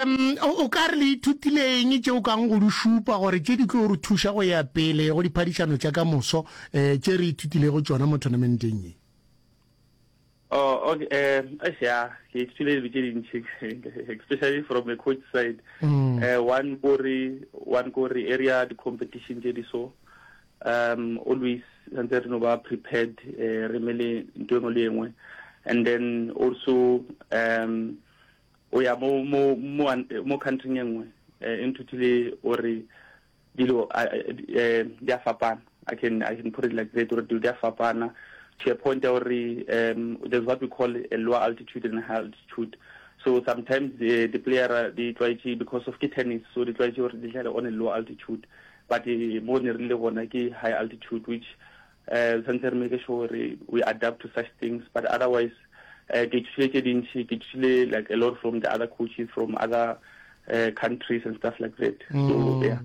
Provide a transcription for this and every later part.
O ka re le ithutile eng tšeo kang go di šupa gore tše di tlo re thuša go ya pele go diphadišano tša ka moso um tše re ithutilego tšona mo tournamenteng ye? Oh, okay. Uh, eh, yeah, ke ithutile dilo tše dintši especially from the coach side mm. uh, one kore one kore area the competition tše di so um always santse re no ba prepared uh, re mele nto engwe le engwe and then also um O ya mo mo mo mo country e nngwe eh, e nthutile o re dilo eh, di a fapana I can I can put it like that or they are fapana to a point or um, there's what we call a lower altitude and high altitude. So sometimes the, the player uh, they try to because of tennis, so they try to or they on a lower altitude. But uh, more really on like high altitude, which um re tshwanetse re make sure gore we adapt to such things but otherwise um ke ithutile tše dintšhi ke ithutile like a lot from the other coaches from other uh, countries and stuff like that so mm. yeah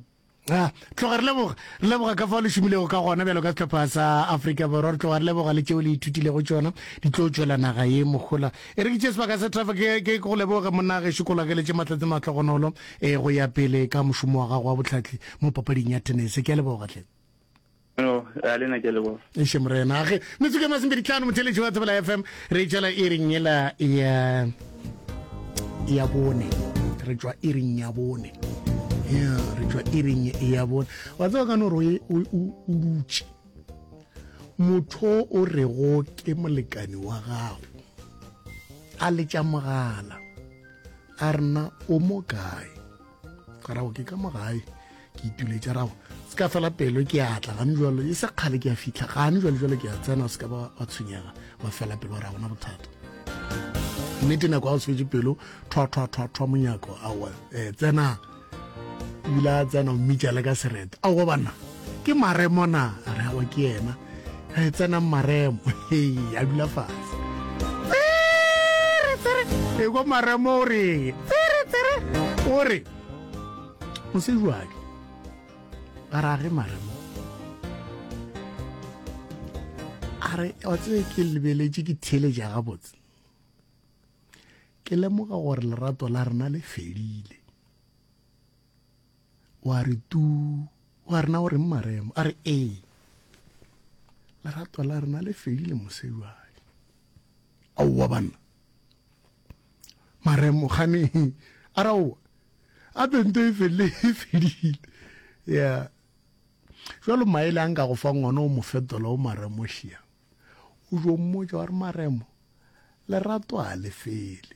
a tloga re leboga re leboga ka fa le šomilego ka gona bjalo ka setlhopha sa aforika borwa re tloga re leboga le tšeo le ithutilego tsona di tlo tswela naga ye mogola e re ke tše sebaka sa trafa ke go leboga monna ge šekola ke letse matletse matlhogonolo um e, go ya pele ka mošomo wa gago wa botlhatlhi mo papading ya tenese ke a lebogatlhe No, ya le na ke le bona. Eše morena age metsuke masembedi tlano motheletši wa tsebela FM re tšwela e reng yela ya ya bone re tšwa e reng ya bone ya re tšwa e reng ya bone wa tseba ka no re o dutše motho o re go ke molekane wa gago a letša mogala a rena o mo kae garago ke ka mo gae ke ituletša rago se ka fela pelo ke a tla gane jalo e se kgale ke a fitlha gane jalo jalo ke a tsena se ka ba wa tshwenyega wa fela pelo ra gona bothata nnete nako ga o swetse pelo thwathwathwathwa monyako awa um eh, tsena ebile a tsena o mmitša le ka sereta aowa banna Ke maremo na? A re awa ke yena. Re tsenang maremo. Hei, a dula fatshe. Tsere, tsere. E kwa maremo o re, tsere, tsere. O re, mosejwadi, a re age maremo. A re, wa tsebe ke lebeletše ke theeletša gabotse. Ke lemoga gore lerato la rena le fedile. Wa re tuu, wa rena o reng maremo? A re ee, lerato la rena le fedile mosejwale. Aowa banna, maremo gane a re aowa, a bento e felile e fedile. Ya jalo maele a nka go fa ngwana o mo fetola o maremo šia. O jo mmotša wa re maremo, lerato a le fele.